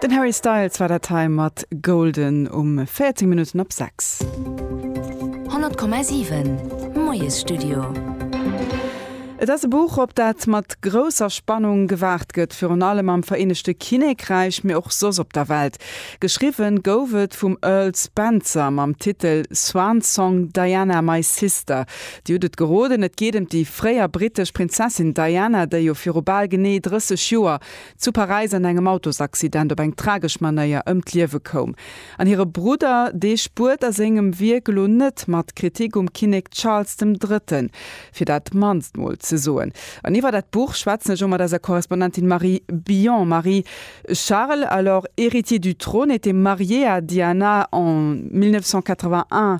Den Harry Styles war dat hei mat Golden um 14 Minutten op 6. 100,7 Moiesstudio. Et ass e Buch, op dat mat grousser Spannung gewaart gëtt, virun allem am Vereenegte Kinnékräich, mee och soss op der Welt. Geschriwwen gouf et vum Earl Spencer mam Titel Swan Song, Diana, My Sister. Dir hutt et geroden, et geet ëm déi fréier brittesch Prinzessin Diana, déi jo viru bal genee 30 Joer zu Paräis an engem Autosaccident op eng tragesch Manéier ëm d'Liewe koum. An hire Brudder, dee spuert a sengem Wierk elo net mat, Kritik um Kinnek Charles dem Drëtten, fir dat mannst mol ze soen. An iwwer dat Buch schwätzen ech elo mat eiser Korrespondentin Marie Billon. Marie, Charles, alors héritier du trône, était marié à Diana en 1981.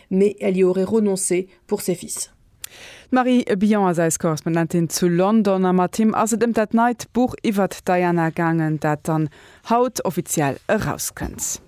mais elle y aurait renoncé pour ses fils. D'Marie Billon ass eis Korrespondentin zu London a mat him ass et ëm dat neit Buch iwwert d'Diana gaangen, dat dann haut offiziell erauskënnt.